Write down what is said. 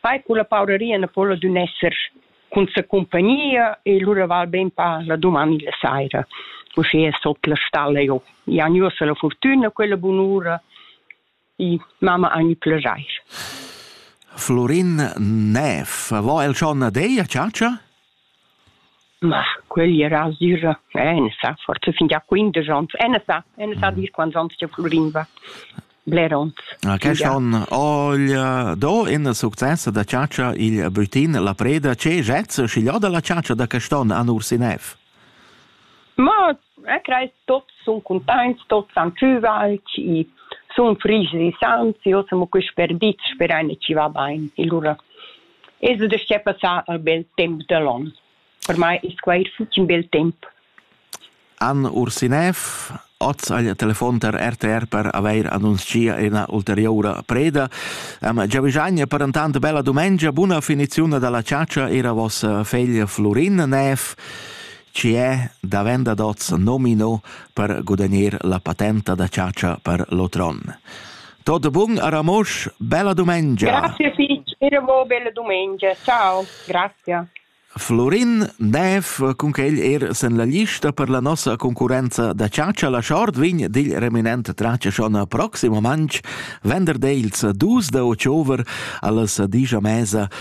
Fai culla paureria na po la dunna esser cun sa cumpagnia e lura val beinpa la dumani la saira. Uschia sot la stalla eu. I han uossa la fortüna, quella bunura. I mamma han ü plajair. Florin Näf, vo el schon a deia, ciacia? Ma quegl era asür e ena sa, forsa fin gia quindesch onns, ena sa, ena sa dir quants onns cha fluriva. Bler onns. Ah, quest onn ogl do ena successa da chatscha igl Bütin la preda. Che jazz schiglio da la chatscha da quest'onn an Ursinef? Ma e creis tots sun cuntaints, tots han pü valc, i sun frigi e sans, io semo quist perdit, sperei ne ci va bain. E lura Es ed uschè passà ün bel temp da l'on. Per mai es quai ün fitg bel temp. Anne Ursinev, oz agl telefon tar RTR per avair annunzia ina ulteriura preda. Am giavischagn per intant bella dumengia, buna finiziun dalla ciacia era vos fegl Flurin Nev, ci è davent ad oz nomino per gudagnir la patenta da ciacia per l'otron. Tutto bun a Ramosch, bella domenica. Grazie Fitch, e mo bella domenica. Ciao, grazie. Florin Neff, con che egli er sen la lista per la nostra concorrenza da ciaccia, la short vin digl reminent traccia schon proximo manch venderdels dus da october allas digia mesa